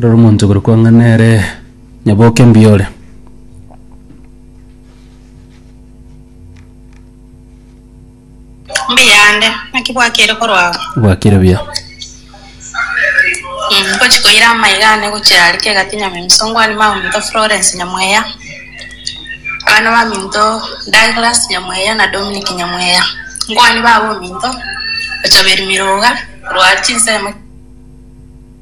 Rora omonto okorokwa ng'a nere nyaboke mbuya ore. Mbuyande, naki bwakire korwa ao? Bwakire buya. Mm, Ngochia koira amaiga ane gochia aria kegati Nyamemsongwani Maminto Florence Nyamweya, abana ba Minto Douglas Nyamweya na Dominic Nyamweya. Nkwani babo Minto, ochobiri Miroga, rwari chinsemo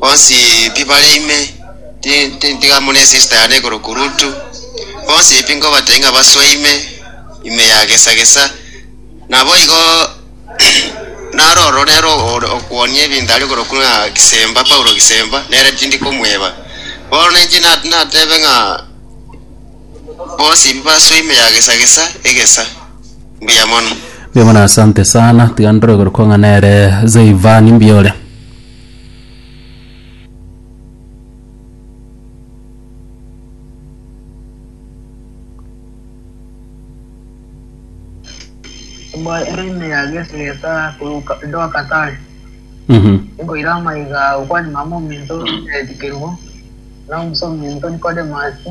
bonsi pi bare ime, ti ti tiga mune esista yane igoro kurutu, bonsi pi nkobatebia ng'a basoe ime, ime ya gesa gesa, naboigo naro oro nere ore okwonia ebinto are igoro kwo ng'a Kisemba, Paulo Kisemba, nere tindi komweba. Bono inche na natebe ng'a bonsi pi basoe ime ya gesa gesa, egesa. Mbuya mono. Mbuya mono asante sana tiga ndore igoro kwo ng'a nere Zeyvani mbuya ore. Embwa ere ime ya Yesu egesa koruka edoka tare. Mhm. Nkoira amaiga okwani mama ominto Eldi Kerubo na omusa ominto Nikodemasi,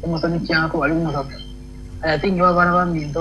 omosani kianga kobari omosaku. Aya tingiba bara baminto